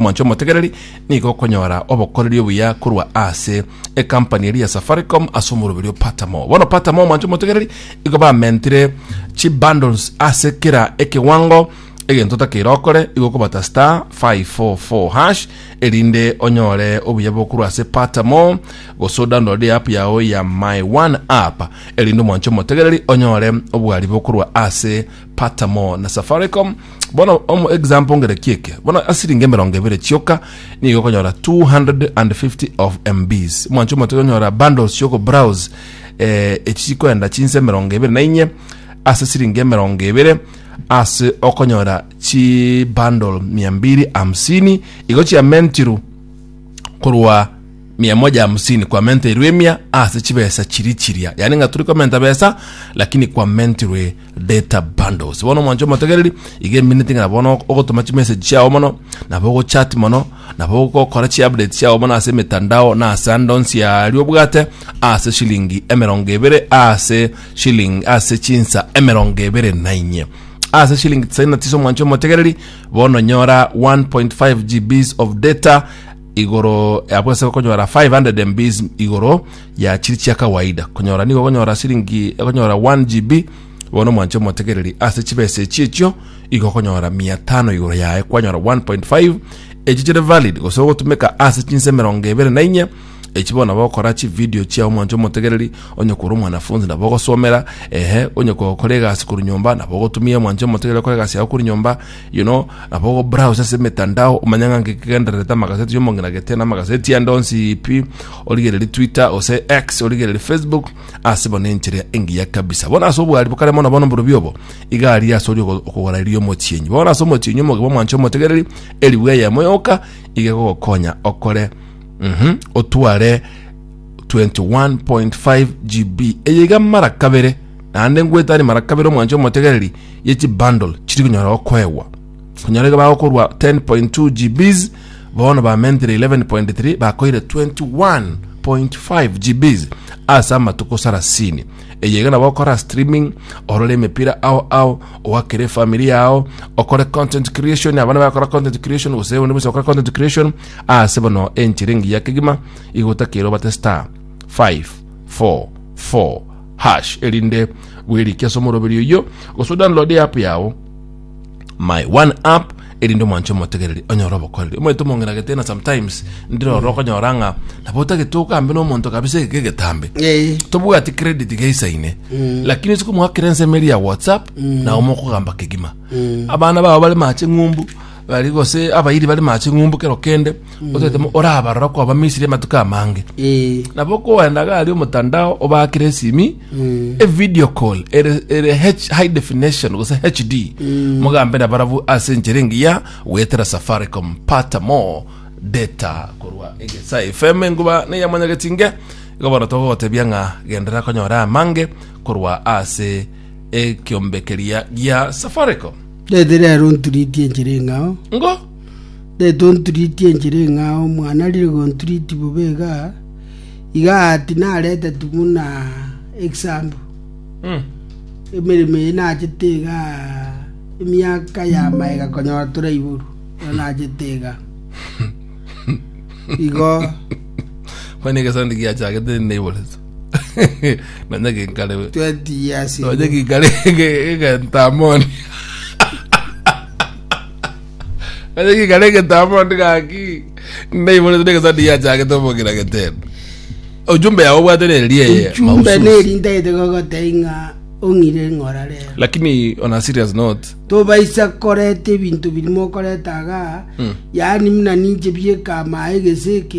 Omonto omotegereri nigo okonyora obokoreri obuya korwa ase ekampani eria ya Safaricom ase omoroberi o Patamo. Bono Patamo omonto omotegereri igo bamentire chi bundles ase kera ekewango egento otakeire okore igo okobata star 544 hash erinde onyore obuya bokorwa ase Patamo gose odownload app yao ya My One app erinde omonto omotegereri onyore obwari bokorwa ase Pata more na Safaricom. Bono omo example ngereki eke. Bono asiringi emerongo ebere chioka nigo okonyora 250 of MBs. Mwancho omote okonyora bundles chioko browse eh, echi chikoenda chinsa emerongo ebere na inye ase siringi emerongo ebere ase okonyora chi bundle mia mbiri hamsini igo chiamentiru korwa mia moja hamsini kwa menta irwe mia ase chibesa chiri chiria yani nga turi komenta besa lakini kwa mentirwe data bundles bono mwancho omotegereri iga emineti ng'a bono ok- ogotoma chimessage chiao mono nabo ogochat mono nabo ogokora chiupdate chiao mono ase emetandao na ase ande onsi aria obwate ase shilingi emerongo ebere ase shilingi ase chinsa emerongo ebere na inye ase shilingi tisaini na tisa omwancho omotegereri bono nyora 1.5 gbs of data igoro yabo ase okonyora 500 mbs igoro ya chiri chia kawaida konyora nigo okonyora siringi okonyora 1 gb bono mwanche omotegereri ase chibesa echi echio igo okonyora 500 igoro yaye kwanyora 1.5 echi chire valid gose ogotumeka ase chinsa emerongo ebere na inye echi bono nabo okora chividio chiao mwanche omotegereri onye kore omwanafunzi nabo ogosomera ehe onye gokora egasi korwa nyomba nabo ogotumia mwanche omotegereri okore egasi yao korwa nyomba You know, nabo ogo browse ase emetandao omanye ng'a nki kigendererete amagazeti y'omong'ina gete na amagazeti yande onsi ipi origereri twitter ose x origereri facebook ase bono enchera engiya kabisa bono ase obwari bokare mono bono mborubi obo iga aria ase ori ogo- okogora erio omochienyi bono ase omochienyi omogima omwancha omotegereri erigwa eyemo yoka iga egogokonya okore mhm, otware 21.5 GB eye iga mara kabere naende ngwetani mara kabere omwancha omotegereri ye chi bundle chiri konyara gokoegwa konyara iga bagokorwa 10.2 GBs bono bamentire 11.3 bakoire 21.5 GBs ase amatuko sarasini eye iga nabo okora streaming orore emepira ao ao ogakere family yao okore content creation abana bakora content creation gose bonde bose bakora content creation ase bono enchera engiya kegima igotakero bate star 5 4 4 Hash erinde bwerike ase omoroberi oyio gose download eapp yao my one app erinde omwanche omotegereri onyore obokoreri omanyete omong'ina getena sometimes ndire oro okonyora ng'a nabo otagete ogambe nomonto kabisa ege kegetambe Eh. tobwati credit geisaine lakini isiko mwakire ensemo eri ya whatsapp nabo mokogamba kegima abana bao bare mache ng'umbu bari gose abairi bare mache ng'umbu kero kende otete mo orabarora kwa abamisiri amatuko amange Eh, nabo okoenda gari omotandao obakire esimi e video call ere ere H- high definition gose hd mogambe na barabu ase enchera engiya goetera safaricom pata more data korwa egesa fm enguba neyamanyagetinge igo bono togogotebia ng'a gendera konyora amange korwa ase ekiombe keria gia safaricom Rete rero nturitie enchera eng'ao ngo netonturiti enchera eng'ao, omwana arire gonturiti bobe iga, iga ati nareteti buna example Mm. emeremo eye nachete iga emiaka ya maega konyora toraiboru iga nachete iga igo Kwani egesonde giachagete neiborete. Nonya ginkare we. 20 years Nonya ago. ginkare egentamoni. Onye gikare egetambe onde gaki ndaiborete na egesati giachagete omogira getebe. Ojumbe yao obwate neri eye Ejumbe mahususi. neri ntaete gogotebia ng'a ong'ire ng'ora rero. Lakini on a serious note, tobaisa koreta ebinto biri mokoreta iga yaani muna ninche bieka amaye gese eke